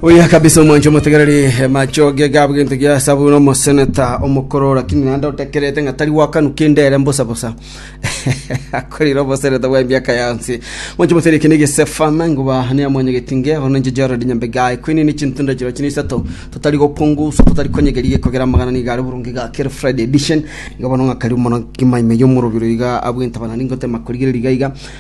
Oya kabisa omwancho omotegereri eh, machoge gabo gento gia sabu na omoseneta omokoro lakini naende otekerete ng'a tari gwakanu kende ere mbosa bosa akorire omoseneta bwa emiaka yansi mwancho omotegereri kende gesefana nguba ne amwanya getinge ono ninche Gerald Nyambegae kwini ni chintunda chiro chine isato totari gokungusa totari konyegeri gekogera amagana niga are burungi ga Keri Friday edition iga bono ng'akari mono kimaime yomorobiro iga abwente abanani ngotema korigereria iga iga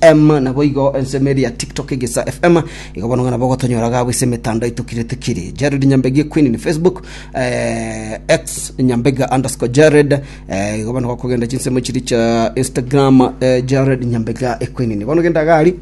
FM, naboigo ensemo eria ya TikTok Egesaa FM, igo bono ng'a nabo ogotonyora iga ase emetandao yaito kire tikiri. Jared Nyambegi Queen ni Facebook, eh, X Nyambega underscore Jared, eh, igo bono gokogenda chinsemo chiri cha Instagram, eh, Jared Nyambega Queen. Bono genda gari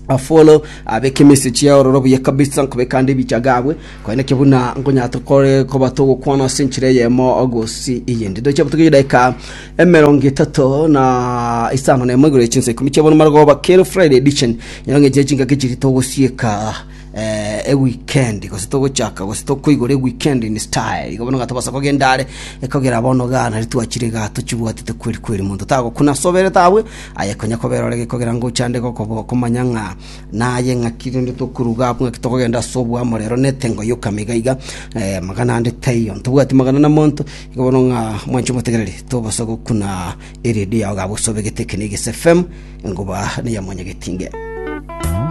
afolo abeke message yaororo buya kabisa nkobeka ande ebicha gabwe Korende ki buna nkonyarete kore koba togokwana ase enchera eyemo gose eyende? Ndoche botuge edaika emerongo etato na isano na emo igoro ye chinsa ikomi chia bono marogoba kero Friday edition. Nyora ng'enche ye chingaki chiria togosieka eh, eweekend gose togochaka gose tokoigora eweekend in style. Igo bono gatobasa kogenda are ekogera bono igaa nari twachire igaa tochibwatete kweri kweri. Monto tagokuna ase oberete abwo, aye konya kobera ore gekogera ngocha ande gokobo- komanya ng'a Naye ng'aki rende tokoruga abwo, ng'aki tokogenda ase oboamo rero na etengo y'okama iga iga? Magana ande taiyo, ntobwati magana na monto. Igo bono ng'a mwanche motegereri, tobose gokuna eredio yao gabwo ase obegete ekenegesi FM, enguba neya mwanyagetinge.